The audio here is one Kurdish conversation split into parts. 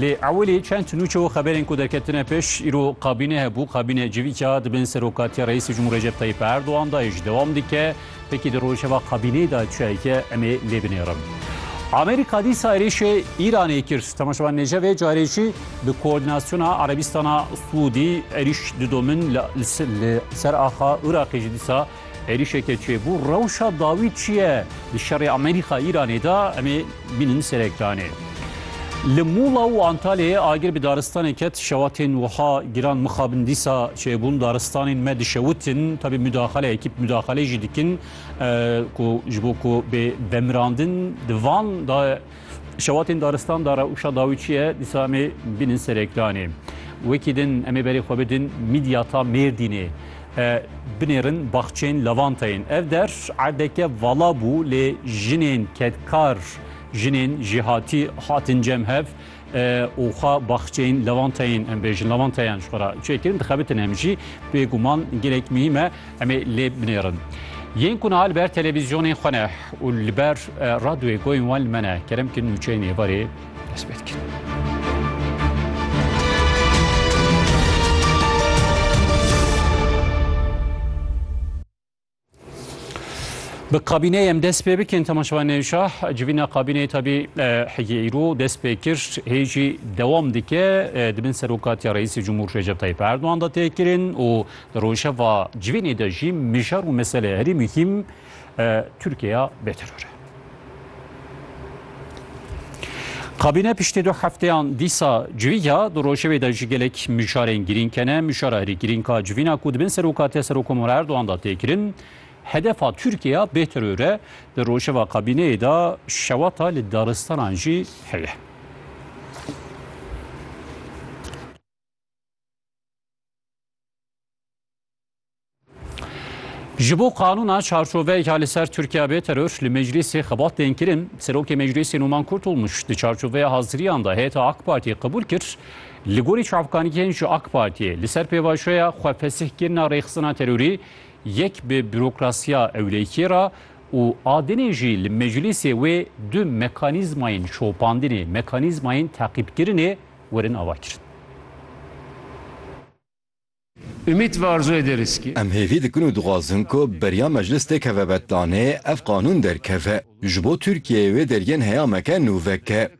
Lê ewilî çend nûçe û xeberên ku derketine pêş îro kabîne hebû, kabîne civîka di bin serokatiya Reîsê Cumhur Recep Tayyip Erdogan da yê ji dewam dike. Pekî di rojeva kabîneyê da çiyayeke em ê lê binêrin. Amerîka dîsa êrîşê Îranê kir. Temaşevan Nêcevê carê jî bi koordînasyona Erebîstana Sûdî êrîş didomin li ser axa Iraqê jî dîsa Êrîşeke çêbû rewşa dawî çi ye di şerê Amerîka-Îranê de em ê bînin ser ekranê. Li Mûla û Antalyayê agir bi daristanê ket şewa tên wiha giran mixabin dîsa çêbûn daristanên me dişewitin tabî mudaxele ekîp mudaxelê jî dikin ku ji bo ku bê vemirandin di van da Şewatên daristan da rewşa dawî çi ye? Dîsa em ê bînin ser ekranê. Wekî din em ê berê xwe bidin mîdyata Mêrdînê. Binêrin baxçeyên lavanteyên. Ev der erdeke vala bû lê jinên kedkar, jinên jêhatî hatin cem hev û xwe baxçeyên lavanteyên em bêjin, lavanteyan ji xwe re çêkirin, dixebitin. Em jî bêguman gelek muhîm e. Em ê lê binêrin. Yên ku niha li ber televîzyonên xwe ne û li ber radyoyê goyên wan li me ne kerem ki nûçeyên êvarê dest pê dikin. Bi kabîneyê em dest pê bikin temaşevan nêşah civîna kabîneyê tabî heyê îro dest pê kir hê jî dewam dike di bin serokatiya reîsê Cumhur Recep Tayyip Erdoğan da tê kirin û Di rojeva civînê de jî mijar û mesele herî muhîm Tirkiyeya bêteror e. Kabîne piştî du hefteyan dîsa civiya di rojevê de ji gelek mijarên girîng kene. Mijara herî girîng a civîna ku dibin serokatiya Serokomara Erdogan da tê kirin. Hedefa Tirkiyeya bêteror e. Di rojeva kabîneyê de şewata li daristanan jî heye. Ji bo qanûna çarçoveyeka li ser Tirkiya bê teror li meclîsê xebat tên kirin, Serokê Meclîsê Numan Kurtulmuş di çarçoveya haziriyan de heyeta AK Partiyê qebûl kir, li gorî çavkaniyên ji AK Partiyê li ser pêvajoya xwefesihkirina rêxistina terorî yek bi bürokrasiya ewlêkiyê re û adinê jî li meclîsê wê du mekanîzmayên şopandinê, mekanîzmayên teqîbkirinê werin avakirin. Umît ve arzoyê dê riskî. Em hêvî dikin û dixwazin ku beriya meclis tê keve betlanê, ev qanûn derkeve. Ji bo Tirkiyeyê wê deriyên heya meke nû veke.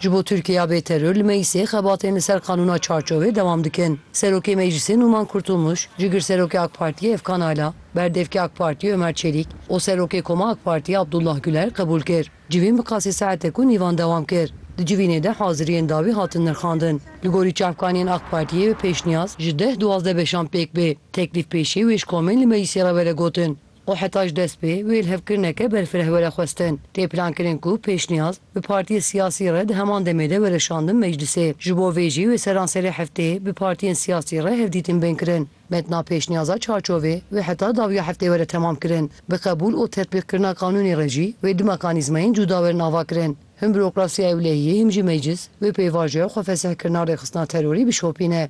Ji bo Tirkiyeya bêteror li meclisê xebatên li ser qanûna çarçovê dewam dikin. Serokê meclisê Nûman Kurtulmuş, Cigirserokê AK Partiyê Efkan Ala, Berdevkê AK Partiyê Ömer Çelîk û Serokê Koma AK Partiyê Abdullah Güler qebûl kir. Civîn bi qasî saetê ku nîvan dewam kir. Di civînê de haziriyên dawî hatin nirxandin. Li gorî çavkaniyên Ak Partiyê bi pêşniyaz ji deh duwazdeh beşan pêk bê. Teklîf pêşî wê ji komên li meclîsê re were gotin û heta ji dest pê wê li hevkirineke berfireh were xwestin. Tê plankirin ku pêşniyaz bi partiyê siyasî re di heman demê de were şandin meclîsê. Ji bo vê jî wê seranserê hefteyê bi partiyên siyasî re hevdîtin bên kirin. Metna pêşniyaza çarçovê wê heta dawiya heftê were temam kirin. Bi qebûl û tetbîqkirina qanûnê re jî wê du mekanîzmayên cûda werin avakirin. Him bûrokrasiya ewlehiyê him jî meclis wê pêvajoya xwefesihkirina rêxistina terorî bişopîne.